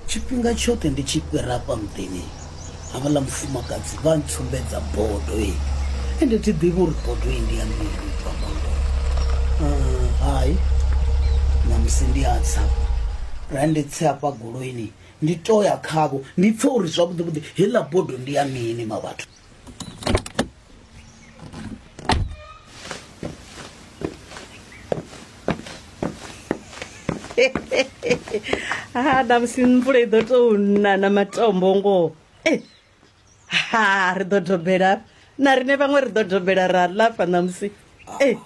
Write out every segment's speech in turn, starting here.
Tshifhinga tshoṱhe ndi tshi fhira afha muḓini havhaḽa mufumakadzi vha ntsumbedza bodo eyi ende thi ḓivhi uri bodo eyi ndi ya mini ubva bodo hai ṋamusi ndi a tsa ra ndi tse hafha goloini ndi to ya khavho ndi pfhe uri zwavhuḓi vhuḓi heiḽa bodo ndi ya mini mavhathu. ha ṋamusi mvula i ḓo tou na na matombo ngoho e ha ri ḓo dobela na rine vhaṅwe ri ḓo dobela ra lafa ṋamusi e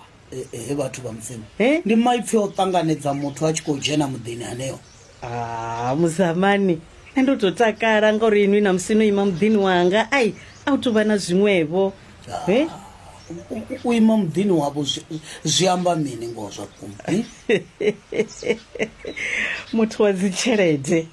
he vhathu vha mudzimu ndi maipfi o ṱanganedza muthu a tshi khou dzhena muḓini haneo a muzamani nṋe ndo tou takala ngauri inwi na musi no ima muḓini wanga ai a u tuvha na zwiṅwevho he u ima muḓini wavho zwi amba mini ngoho zwa vhukuma muthu wa dzitshelede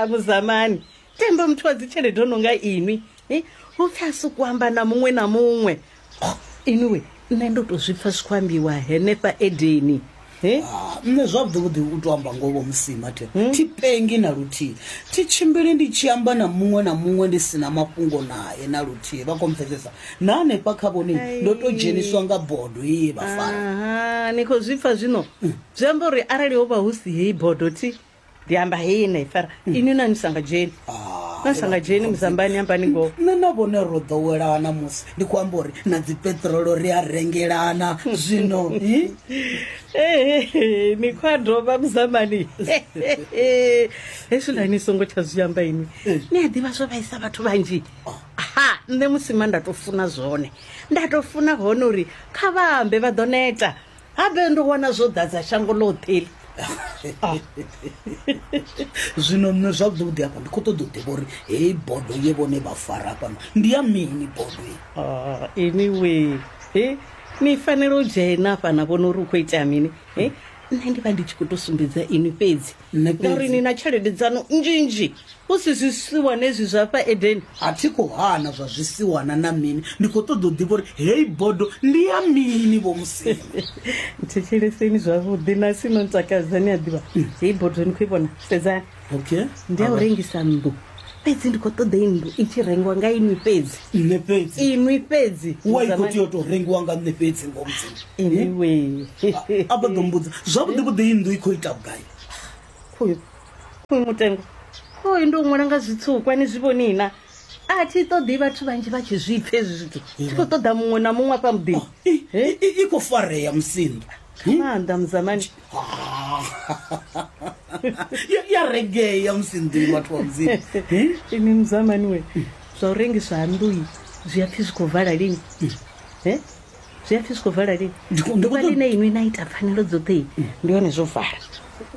muzamani tenda muthu wa dzitshelede o no nga inwi eh, hu pfi a sokou amba na muṅwe na muṅwe Oh, inwi nṋe ndo tou zwi pfa zwi khou ambiwa henefha edeni Eh, Ah, nṋe zwavhuḓivhuḓi u to amba ngoho musima the thi pengi na luthihi thi tshimbili ndi tshi amba na muṅwe na muṅwe ndi si na mafhungo naye na luthihi vha khou mpfesesa na hanefha kha vhone ndo to dzheniswa nga bodo ye vha fara aha ni khou zwi pfa zwino zwi amba uri arali ho vha hu si heyi bodo thi ndi amba hei na ifara ini na ni sanga dzheni Ah, na sanga dzheni muzambani ni amba ni ngoho nṋe na vhone ro ḓowelana musi ndi khou amba uri na dzipeṱirolo ri a rengelana zwino hi? Ehe, ni khou a dovha muzambani hezwiḽa ni songo tsha zwi amba ini ni a ḓivha zwo vhaisa vhathu vhanzhi ha nṋe musima nda tou funa zwone nda tou funa hone uri kha vha ambe vha ḓo neta Habe ndo wana zwo ḓadza shango ḽoṱhe iḽi. Ah. zwino nṋe zwavhuḓi hafha ndi khou ṱoḓa u ḓivha uri heyi bodo ye vhone vha fara fhano ndi ya mini bodo ah, anyway he ni fanela u dzhena fhana vhona uri u khou itea mini he nṋe ndi vha ndi tshi khou tou sumbedza inwi fhedzi nṋe ngauri fhedzi ni na tshelede dzanu nzhinzhi hu si zwisiwana ezwi zwa fha edeni a thi khou hana zwa zwisiwana na mini ndi khou ṱoḓa u ḓivha uri heyi bodo ndi ya mini vho musina thetsheleseni zwavhuḓi na sino ntakadza ni a ḓivha heyi bodo ni khou i vhona sedzani okay ndi ya u rengisa nnḓu fhedzi ndi khou ṱoḓa inndu i tshi rengiwa nga inwi fhedzi nṋe fhedzi inwi fhedzi wa i khou tea u tou rengiwa nga nṋe fhedzi ngo mudzimu anyway a vha ḓo mbudza zwavhuḓi vhuḓi inndu i khou ita vhugai khoyu khoyu mutengo khoyu ndi u ṅwala nga zwitsukwa ni zwi vhonina a thi ṱoḓi vhathu vhanzhi vha tshi zwipfa hezwi zwithu thi khou ṱoḓa muṅwe na muṅwe afha muḓini i khou farea musinḓa nga maanḓa muzamani ya ya regea musi nḓuyi vhathu wa mudzimu ini muzamani we zwa u rengiswa ha nnḓuyi zwi a pfhi zwi khou vala lini e zwi a pfhi zwi khou vala lini Ndi khou- ndi khou ḓuvha ṱoḓa- ḽine inwi na ita pfanelo dzoṱhe ndi hone zwo vala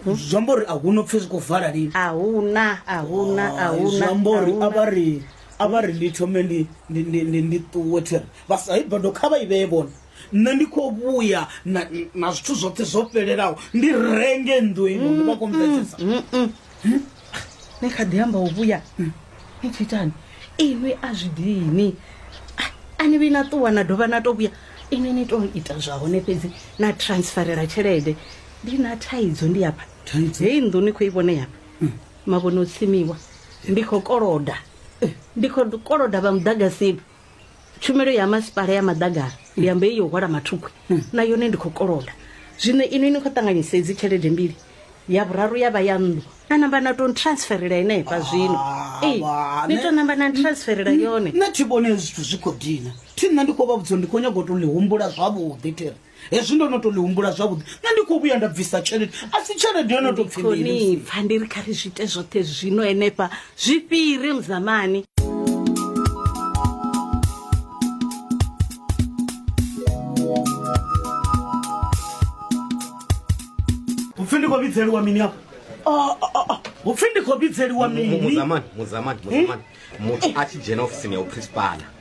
zwi amba uri a hu no pfhi zwi khou vala lini a huna a huna a Hai, huna zwi amba uri a vha ri a vha ri ndi thome ndi- ndi- ndi- ndi- ndi ṱuwe thiri vha sa i bado kha vha i vhee vhone nṋe ndi khou vhuya na, na zwithu zwoṱhe zwo fhelelaho ndi renge nnḓu ino ndi vha khou mvedzesa ni kha ḓi amba u vhuya ni tshi itani inwi a zwi dini A- a ni vhi na ṱuwa na dovha na to vhuya inwi ni to ita zwa hone fhedzi na transferela tshelede ndi na thaidzo ndi hafha Thaidzo? heyi nnḓu ni khou i vhone hafha mavhone o tsimiwa ndi khou koloda ndi khou koloda vha muḓagasini tshumelo ya masipala ya maḓagara ndi amba iyo hwala mathukwe na yone ndi khou koloda zwino ino ini khou ṱanganyisa edzi tshelede mbili ya vhuraru ya vha ya nnḓu na namba na tou transferela henefha zwino Ee, wa, ni ne- tou namba na transferela yone nṋe thi vhone zwithu zwi khou dina thi nṋe ndi khou vha vhudza uri ndi khou nyanga u tou ḽi humbula zwavhuḓi thiri hezwi ndo no to ḽi humbula zwavhuḓi nṋe ndi khou vhuya nda bvisa tshelede a si tshelede yo no to pfi mini Khoni pfa ndi ri kha ri zwi ite zwoṱhe zwino henefha zwi fhire muzamani upfi ndi khou vhidzeliwa mini afho Oh, oh, oh, oh. upfi ndi khou vhidzeliwa mini muzamani muzamani muzamani muthu a tshi dzhena ofisini ya uprinsipala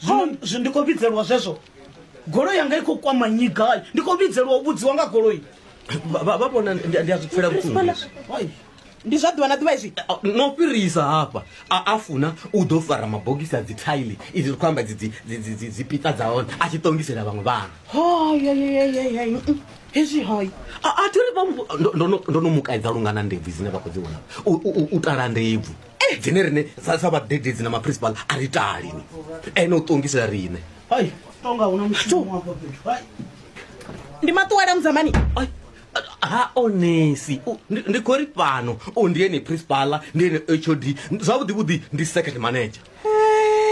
zwino zwi- ndi khou vhidzelwa zwezwo goloi yanga i khou kwama nnyi gai ndi khou vhidzelwa u vhudziwa nga goloi Vha- vha vha vhona ndi ndi a zwi pfela vhuṱungu hezwi. Wai, ndi zwa ḓuvha na ḓuvha izwi A- no fhirisa hafha a a funa u ḓo fara mabogisi a dzithaili izi ri khou amba dzi- dzi- dzi- dzi- dzi- dzipita dza hone a tshi ṱongisela vhaṅwe vhana hayayayayay hezwi hayi a a thi ri vha mu- ndo- ndo no- ndo no mu kaidza lungana ndebvu dzine vha khou dzi vhona U- u u- u tala ndebvu dzine rine sa sa vhadededzi na maprincipal a ri tali ni ene u ṱongisela rine hai tonga huna mushumo hafha fhethu hai ndi maṱuwela mudzamani Ai, ha onesi U- ndi- ndi khou ri fhano o ndi ene principala ndi ene hod zwavhuḓi vhuḓi ndi second manager